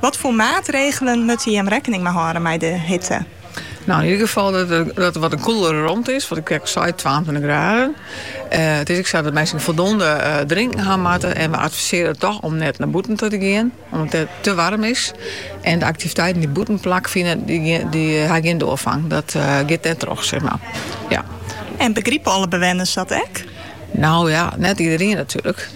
Wat foar maatregelen moatte jim rekkening mei hâlde mei de hitte? Nou, yn ieder gefal dat it wat in koelere romte is, wat ik ek sei, twaentweintich graden. Eh, it is ek sa dat minsken foldonde eh, drinken ha moatte en we advisearje toch om net naar bûten te gean, omdat het te warm is. En de activiteiten die bûten plak fine, die, die eh, ha gjin doorgang. Dat eh, giet net troch, zeg maar. Ja. En begripe alle bewenners dat ek? Nou ja, net iedereen natuurlijk.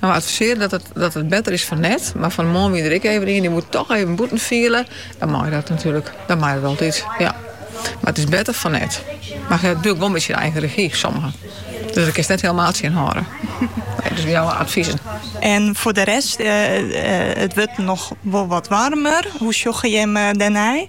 We advisearje dat it better is fan net, mar fan 'e moarn wie der ek even ien, dy woe toch even bûten fiele. Dan mei dat natuerlik, dan mei dat altyd. Ja. Mar it is better fan net. Mar it bliuwt natuerlik wol in bytsje yn eigen regi, sommigen. Dus dat kinst net hielemaal tsjin hâlde. Nee, dus jouwe adviezen. En voor de rest, eh, eh, it wurdt noch wol wat warmer. Hoe sjogge jim eh, dan?